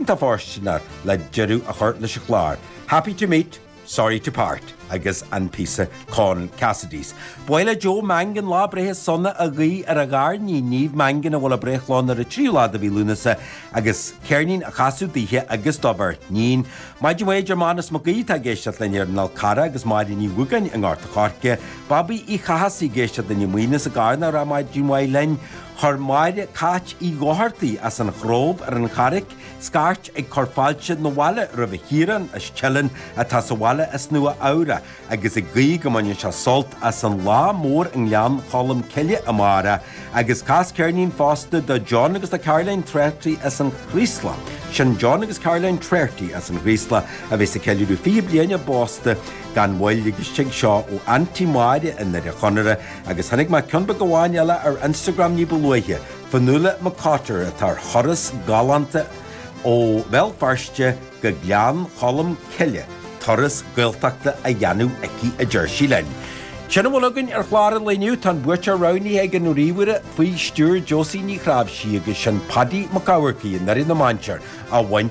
Tá foisteanach le deireadh a chur leis an gclár, Happy to meet, sorry to part, agus an píosa Con Cassidy's. Ba mhaith le Joe Mangan lá breithe sona a ghuí ar a gharníon Niamh Mangan, a bhfuil a breithlá ann ar an tríú lá de mhí Lúnasa, agus ceirnín a chasadh daoithe agus do bheirt níon. Maidin mhaith, a deir Mánus Mac Aoidh atá ag éisteacht linn ar an Fhál Carrach agus Máire Ní Mhugáin i nGort a' Choirce. Babaí Uí Chathasaigh ag éisteacht linn i Maínis i gCarna ag rá maidin mhaith linn. Chuir Máire Cáit Uí Dhochartaigh as an Chróibh ar an Charraic scairt ag cur fáilte 'na bhaile roimh Chiarán as Teileann atá sa bhaile as Nua Eabhra agus ag guí go mbainfidh sé sult as an lá mór i nGleann Cholm Cille amáireach agus cas ceirnín fosta do John agus do Caroline Treacy as an Chraoslach. Sin John agus Caroline Treacy as an Chraoslach a bheas ag ceiliúradh 20 bliain a bpósta gan mhoill agus tig seo ó Aunty Máire i nDoire Chonaire, Agus tháinig ceann beag amháin eile ar Instagram ní ba luaithe, Fionnuala McCotter, atá ar thuras galánta ó Bhéal Feirste go Gleann Cholm Cille, turas Gaeltachta a dhéanamh aici a deir sí linn. Sin a bhfuil againn ar chlár an lae inniu, tá an buaiteoir roghnaithe ag an ríomhaire faoi stiúir Josie Ní Chnáimhsí agus sin Paddy Mac Eachmharcaigh i nDoire na Mainséar a bhain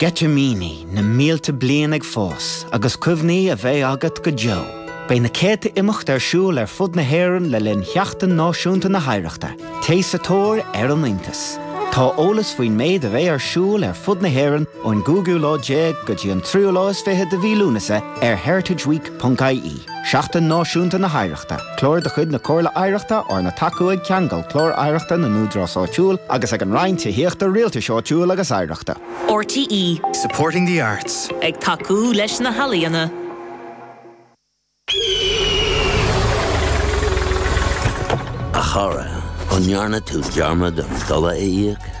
Sceitimíní na mílte bliain ag fás agus cuimhní a bheidh agat go deo. Beidh na céadta imeacht ar siúl ar fud na hÉireann le linn Sheachtain Náisiúnta na hOidhreachta. Téigh sa tóir ar an iontas. Tá eolas faoin méid a bheidh ar siúl ar fud na hÉireann ón gcúigiú lá déag go dtí an tríú lá is fiche de mhí Lúnasa ar heritageweek.ie. Seachtain Náisiúnta na hOidhreachta, Clár de chuid na Comhairle Oidhreachta arna tacú ag Ceangal, Clár Oidhreachta na nÚdarás Áitiúil, agus ag an Roinn Tithíochta, Rialtais Áitiúil agus Oidhreachta. RTÉ. Supporting the arts. Ag tacú leis na healaíona. A chara, an ndearna tú dearmad an dola a íoc?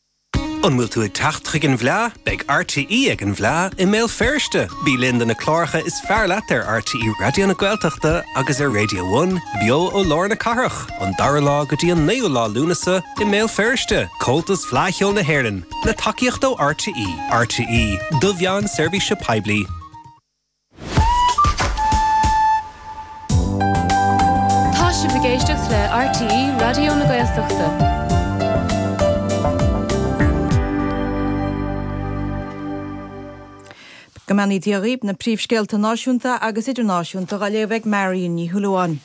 An bhfuil tú ag teacht chuig an bhFleá? Beidh RTÉ ag an bhFleá i mBéal Feirste! Bí linn do na cláracha is fearr leat ar RTÉ Raidió na Gaeltachta agus ar Radio One, beo ó lár na cathrach, an dara lá go dtí an naoú lá Lúnasa i mBéal Feirste. Comhaltas Fleá Cheoil na hÉireann, le tacaíocht ó RTÉ. RTÉ, do mheán seirbhíse poiblí. Tá sibh ag éisteacht le RTÉ Raidió na Gaeltachta. Go mbeannaí Dia dhaoibh, na príomhscéalta náisiúnta agus idirnáisiúnta á léamh ag Marion Ní Shúilleabháin.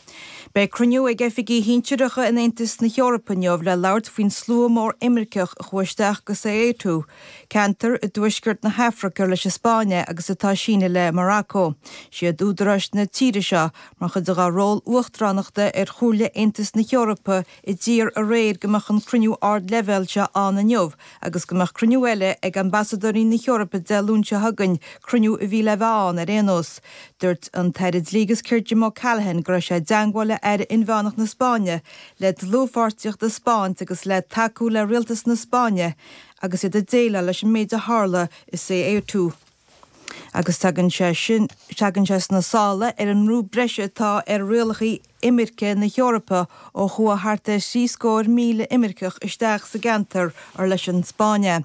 Beidh cruinniú ag oifigigh shinsireacha in Aontas na hEorpa inniu le labhairt faoin slua mór imirceach a chuaigh isteach go Ceuta Ceantar i dtuaisceart na hAfraice ar leis an Spáinn é agus atá sínte le Maracó. Siad údaráis na tíre seo, mar chuid de dhá ról uachtaránachta ar Chomhairle Aontas na hEorpa, a d'iarr aréir go mbeadh an cruinniú ardleibhéal seo ann inniu agus go mbeadh cruinniú eile ag Ambasadóirí na hEorpa Dé Luain seo chugainn, cruinniú a bhí le bheith ann ar aon nós. Dúirt an tAire Dlí agus Cirt Jim O'Callaghan go raibh sé i dteangmháil le Aire Inmheánach na Spáinne le dlúthpháirtíocht a spáint agus le tacú le Rialtas na Spáinne agus iad ag déileáil leis an méid a tharla i Ceuta. Agus tagann, tagann sé sna sála ar an mbrú breise atá ar rialacha imirce na hEorpa ó chuaigh thart ar thrí scór míle imirceach isteach sa gceantar or leis an Spáinn é.